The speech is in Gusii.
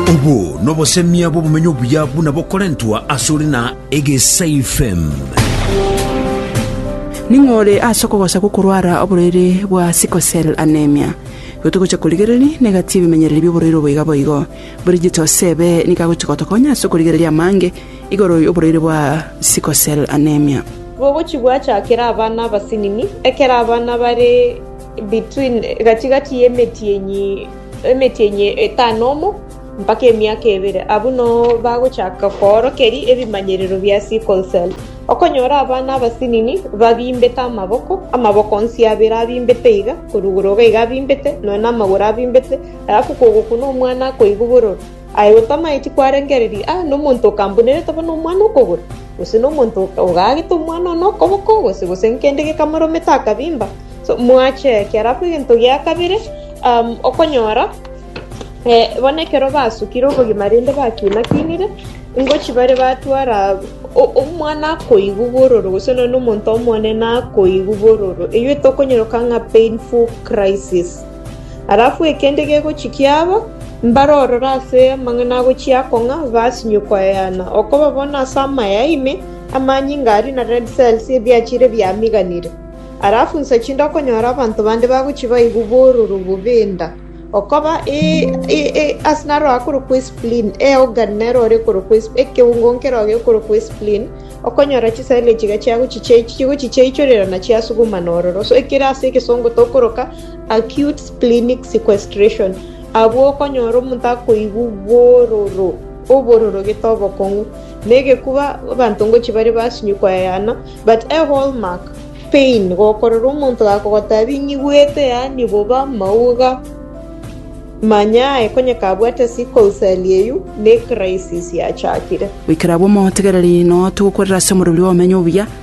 Obo nobosemia bw'obomenyo obuya buna bokorentwa asore na Egesaifm. Ning'o ore ase okogosa gw'okorwara oborwaire bwa sickle cell anemia? Igo togocha korigereria negati ebimenyereri bi'oborwaire obo iga boigo. Bridget Osebe nigo agochia gotokonya ase okorigereria amange igoro y'oborwaire bwa sickle cell anemia. Bogochi bwachakire abana abasinini, ekero abana bare between gati-gati y'emetienyi. emetienyi etanomo mpaka emiaka ebere. Abwo noo bagochaka koorokeria ebimanyerero bia sickle cell. Okonyora abana abasinini babimbete amaboko, amaboko onsi abere abimbete iga, korwa igoro iga abimbete, nonya namagoro abimbete, alafu kogokuna omwana akoigwa obororo. Aye otamaeti kwarengereria aa nomonto okambonerete obe nomwana okogore, gose nomonto ogaagete omwana one okoboko, gose gose nkende gekamoromete akabimba, so moache ekiara abwo egento gia kabere um, okonyora eh, bono ekero basukire obogima rende bakina-kinire, ngochi bare batwara o- omwana akoigwa bororo, gose nonya nomonto omonene akoigwa bororo, eyio etokonyoroka ng'a painful crisis. Alafu ekende gegochi kiabo, mbarorore ase amang'ana agochia kong'a basinyo koeana, okobabona ase amaya ime, amanyinga aria na red cells ebiachire biamiganire. Alafu inse chinde okonyora abanto bande bagochi baigwa bororo bobe enda, okoba ee, ee, ee, ase naroa korokwa espleen, ee, organ nero ore korokwa esp- ekeungo nkero ore korokwa espleen, okonyora chisela echiga chiagochi chie- chigochi chiaichorera na chiasugumana ororo, so ekere ase ekesongo tokoroka Acute splenic sequestration, Abwo okonyora omonto akoigwa obororo, obororo gete obokong'u, na egekuba abanto ngochia bare basinywe koeana, but a hallmark, pain, gokorora omonto akogotaa bing'igwete yaani boba mauga, manya aye konyeka abwate sickle cell eyio ne crisis yachakire. Goikera abwo motegereri, notogokorera ase omorero oria omenye obuya,